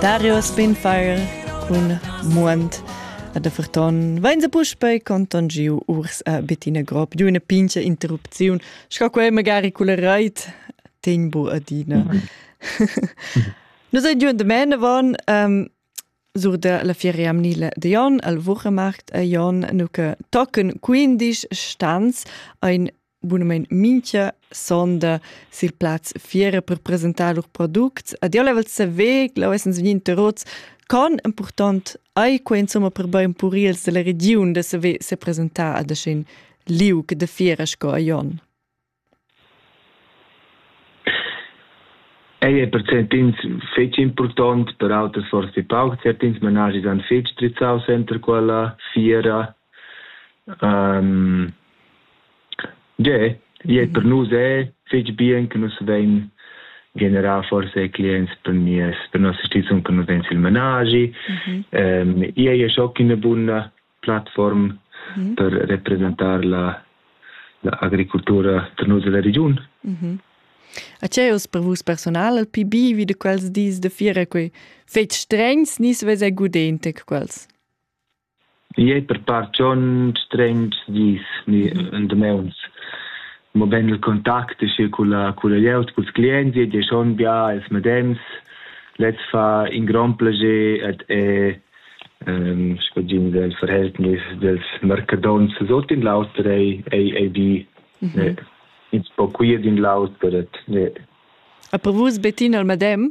Darius Spinfire cun Muond a de Ferton vain se puspei contangiu urs a Bettina Grob giu üna pincha interrupziun, sco quei magari culla reit tempo adina. Nos ei giun de mene von ähm, sur de la fiera amnile de Jon al Wuchemarkt a Jon nu che tocken 15 stanz ein Bunamain mincha sonda sil plaz fiera per presentar lur products. Ed io level saver che leu essens vegni interrots con important ei quei insomma per bein purils della regiun da saver se presentar ad aschin liug de fiera sco a Jon. Ei è percentins fetg important, per auter forse pauc, certins managis han fetg strizzau center quella fiera Um, Tge, e per nus è fitg bien che nus vein generà forse clients per mies, per nossa stizun che nus vein sil menagi. Mm -hmm. um, e è schon una buona plattform mm -hmm. per representare la, la agricoltura per nus della regione. Mm -hmm. A c'è us per vus personal al PB vi de quels dis de fiera quei fetg strengs ni svese gudente quels? Igl ei per part schon strengs dis ni en dameuns, mobein il contact aschi culla culla glieud, culs clients ei ei schon bia ils medems. Lez fa in grond plascher ed è sco tg'ins el verhältnis dels mercadonts sut in l'auter ei ei ei bi. Ins po cuir d'in l'auter ed. E per vus Bettina il medem?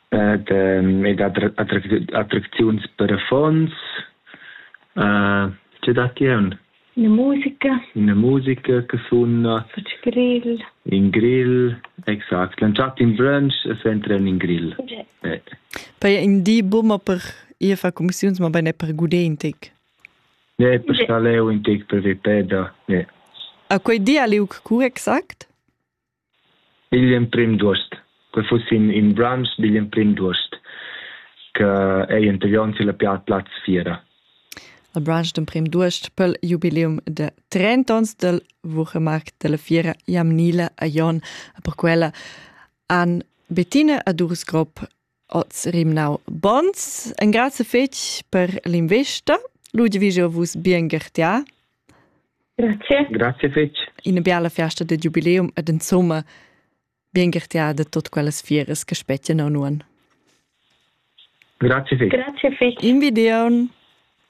ed, ehm, ed attracziuns per affons. Uh, tge datti aun? Una musica. Una musica che sunna. Faccio grill. In grill, exact. Lanciat in brunch e s'entren in grill. Okay. Eh. Poi in di bumma per ir fa commissiuns, ma bene per guder in tic. Ne, per star leu in tic per vepeda. Ne. A quei di a liug cu exact? Igl emprim d'uost. Quei fuss in, in brunch digl emprim d'uost che ei anterior sur la Plaz Fiera. Il brunch d'emprim d'uost pel jubileum da trent'onns dal Wuchemarkt dalla fiera Jamnila a Jon. E per quella han Bettina Adurs-Grob oz rimnau bons. Engrazie fetg per l'investa. Ludwig, vus bien gertia. Grazie. Grazie fetg. Ina biala festa de jubileum ed insomma bien gertia de tot quellas fieres che spettian a nuan. Grazie fetg. Grazie fetg. Invidion.